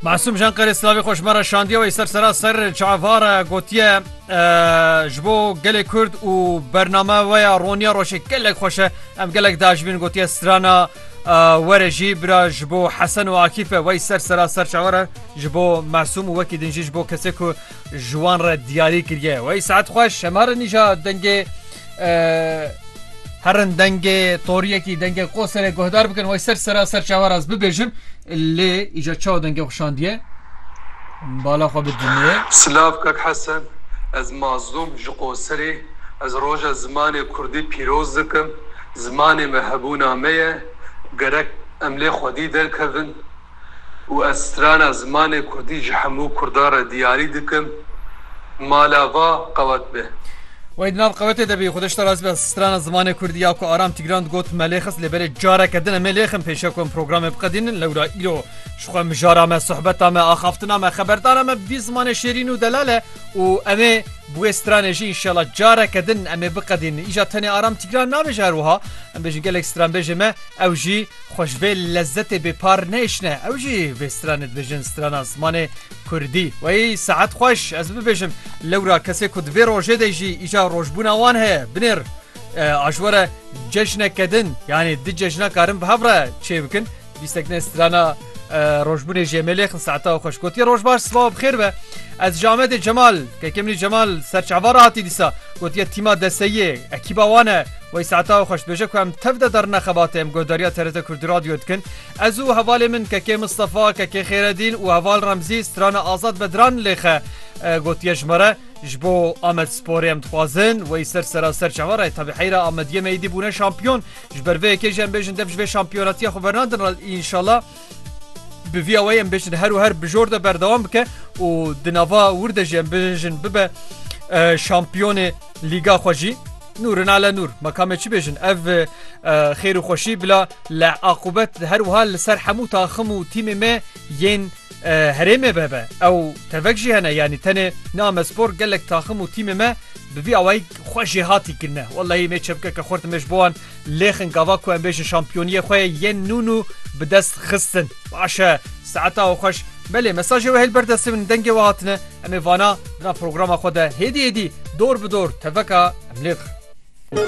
Masum Jan Qerê Slavê xweş me re şandiye wê ser sera ser çavare gotiye ji bo gelê Kurd û bername we ya roniya roşê gelek xweşe em gelek dajibin gotiye strana were jî bira ji bo hesen û akîfe wey ser sera ser çavare ji bo masum û wekî din jî ji bo kesê ku ji wan re diyarî kiriye. Wey saet xweş hemarin nîja dengê herin dengê toriyekî dengê qoserê guhdar bikin wey ser sera ser çawa raz bibêjin lê îja çawa dengê xuşandiye bala xwe bidînê. Silav kak Hesen ez Mazlûm ji Qoserê ez roja zimanê kurdî pîroz dikim zimanê me hebûna me ye gerek em lê xwedî derkevin. û ez strana zimanê kurdî ji hemû kurdan re diyarî dikim, mala va qewet be. Wey di nav qewetê de bî. Xwedê ji te razî be. Strana zimanê kurdî ya ku Aram Tîgran digot me lê xist lê belê careke din em ê lê xin pêşiya ku em programê biqedînin lewra îro ji xwe mijara me, sohbeta me, axaftina me, xeberdana me bi vî zimanê şêrîn û delal e û em ê bi wê stranê jî înşela careke din em ê biqedînin. Îja tenê Aram Tîgran nabêje her wiha, em bêjin gelek stranbêjê me ew jî Xwe ji vê lezzetê bêpar nêşne. Ew jî vê stranê dibêjin strana zimanê kurdî. Wey saet xweş ez bibêjim lewra kesê ku di vê rojê de jî îja rojbûna wan heye binêr a ji we re cejneke din yanî di cejna karin bi hev re çê bikin bîstek ne strana rojbûnê jê me lêxin saeta xweş gotiye roj baş sibawa bi xêr be ez ji Amedê Cemal kekê min Cemal serçava re hatî dîsa gotiye tîma deseyiyê ekîba wan e Wey saeta xwe xweşdibêje ku em tev de derine xebatê em guhdarîya TRT Kurdî Radyoyê dikin. Ez û hevalê min Kekê Mistefa, Kekê Xêredîn û heval Remzî strana Azad Bedran lê xe gotiye ji me re ji bo Amedsporê em dixwazin wey ser sera ser çawa re tevî heyra Amediyê me êdî bûne şampiyon ji ber vê yekê jî em bêjin dev ji vê şampiyonatiya xwe vernadin re înşala bi vîya wey em bêjin her û her bi jor de berdewam bike û di nava wir de jî em bêjin bibe şampiyonê lîga xwe jî Nûrin ale nûr mekamê çi bêjin ev xêr û xweşî bila le aqubet her wiha li ser hemû taxim û tîmê me yên herêmê be be ew tevek jî hene yanî tenê name spor gelek taxim û tîmê me bi vî awayî xwe jêhatî kirine wellahî me çepkeke xurt me ji bo wan Lêxin gava ku em bêjin şampiyoniyê xwe yên nû nû bi dest xistin. Baş e. Saet a xweş. Belê mesajê we hê li ber destê min in dengê we hatine. Em ê vana di nav programa xwe de hêdî hêdî, dor bi dor teveka em lê dixin.